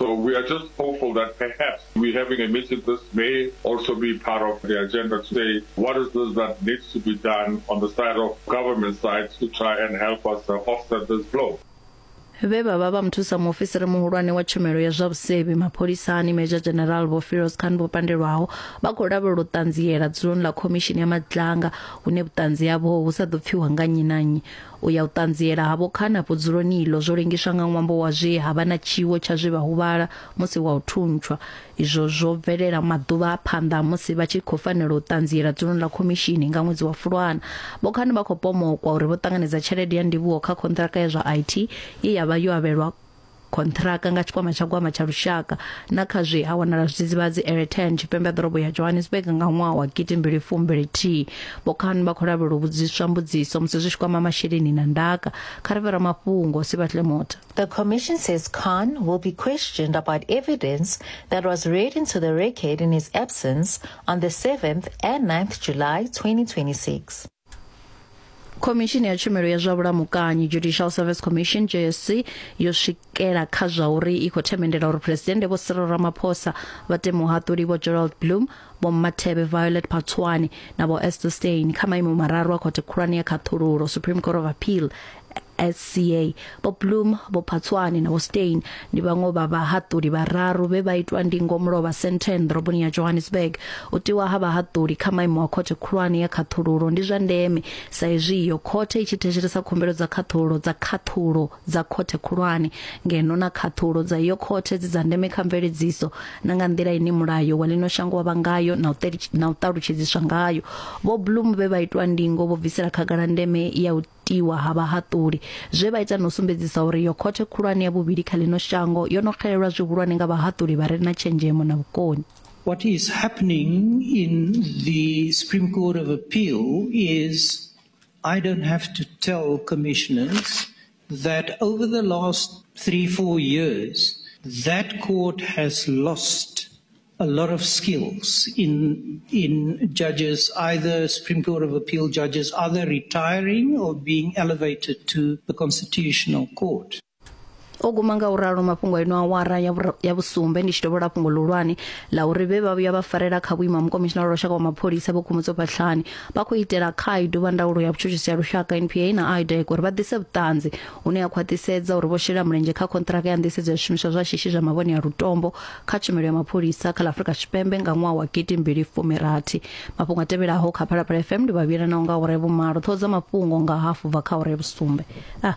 We are just hopeful that perhaps we're having a meeting. This may also be part of the agenda today. What is this that needs to be done on the side of government side to try and help us uh, offset this blow? vhe vha vha vha muthusa muofisiri muhulwane wa tshumelo ya zwa vhusevhi mapholisani major general vho firos khan vho pandelwaho vha khou lavhelela u ṱanziela dzuloni ḽa khomishini ya madlanga hune vhuṱanzi havho hu sa ḓo pfiwa nga nnyi na nnyi U ya u ṱanziela ha vho Khana vhudzuloni iḽo zwo lengiswa nga ṅwambo wa zwe ha vha na tshiwo tsha zwe vha huvhala musi wa u thuntshwa. Izwo zwo bvelela maḓuvha a phanḓa ha musi vha tshi khou fanela u ṱanziela dzuloni ḽa khomishini nga ṅwedzi wa Fulwana. Vho Khana vha khou pomokwa uri vho ṱanganedza tshelede ya ndivhuho kha khonṱhiraka ya zwa IT ye ya vha yo avhelwa khonṱhiraka nga tshikwama tsha gwama tsha lushaka na kha zwe ha wanala zwidzidzivhadzi eretan tshipembe ha ḓorobo ya johannesburg nga ṅwaha wa gidi mbili fumbili thihi vhokhan vha khou lavhelela u vhudziswa mbudziso musi zwi tshi kwama masheleni na ndaka kha ri vhe ramafhungo sibatle mota The Commission says Khan will be questioned about evidence that was read into the record in his absence on the 7th and 9th July 2026. khomishini ya tshumelo ya zwa vhulamukanyi judicial service commission jsc yo swikela kha zwa uri i khou themendela uri phuresidennde vho cyril ramaphosa vha te muhaṱuli vho gerald bloom vho mathebe violet patswani na vho esther stein kha maimo mararu a khothe khulwane ya khaṱhululo supreme court of appeal SCA. Vho Bloom, Vho Phatswani na Vho Steyn ndi vhaṅwe vha vhahaṱuli vhararu vhe vha itwa ndingo mulovha Sandton ḓoroboni ya Johannesburg. U tiwa ha vhahaṱuli kha maimo a khothe khulwane ya khaṱhululo ndi zwa ndeme sa izwi iyo khothe i tshi thetshelesa khumbelo dza khaṱhululo dza khaṱhulo dza khothe khulwane ngeno na khaṱhulo dza iyo khothe dzi dza ndeme kha mveledziso na nga nḓila ine mulayo wa ḽino shango wa vha ngayo na u teli- na u ṱalutshedziswa ngayo. Vho Bloom vhe vha itwa ndingo vho bvisela khagala ndeme ya u tiwa ha vhahaṱuli zwe vha ita na u sumbedzisa uri yo khothe khulwane ya vhuvhili kha ḽino shango yo no xelelwa zwihulwane nga vhahaṱuli vha re na tshenzhemo na vhukoni. What is happening in the Supreme Court of Appeal is I don't have to tell commissioners that over the last three, four years, that court has lost a lot of skills in in judges, either Supreme Court of Appeal judges, either retiring or being elevated to the Constitutional Court. o guma nga u ralo mafhungo a ino awara ya vhura- ya vhusumbe ndi tshi dovhola fhungo ḽihulwane ḽa uri vhe vha vhuya vha farela kha vhuimo ha mukomishinara wa lushaka wa mapholisa vho khumutso phatlhani vha khou itela khaidu vha ndaulo ya vhutshutshisi ya lushaka npa na idec uri vha ḓise vhuṱanzi hune ha khwaṱhisedza uri vho shela mulenzhe kha konṱiraka ya nḓisedzo ya zwishumiswa zwa shishi zwa mavhone ya lutombo kha tshumelo ya mapholisa kha ḽa afurika tshipembe nga ṅwaha wa gidi mbili fumirathi mafhungo a tevhelaho kha phalaphala fm ndi vhavhila nao nga ure vhumalo ṱhoho dza mafhungo nga hafu bva kha ure vhusumbe ah.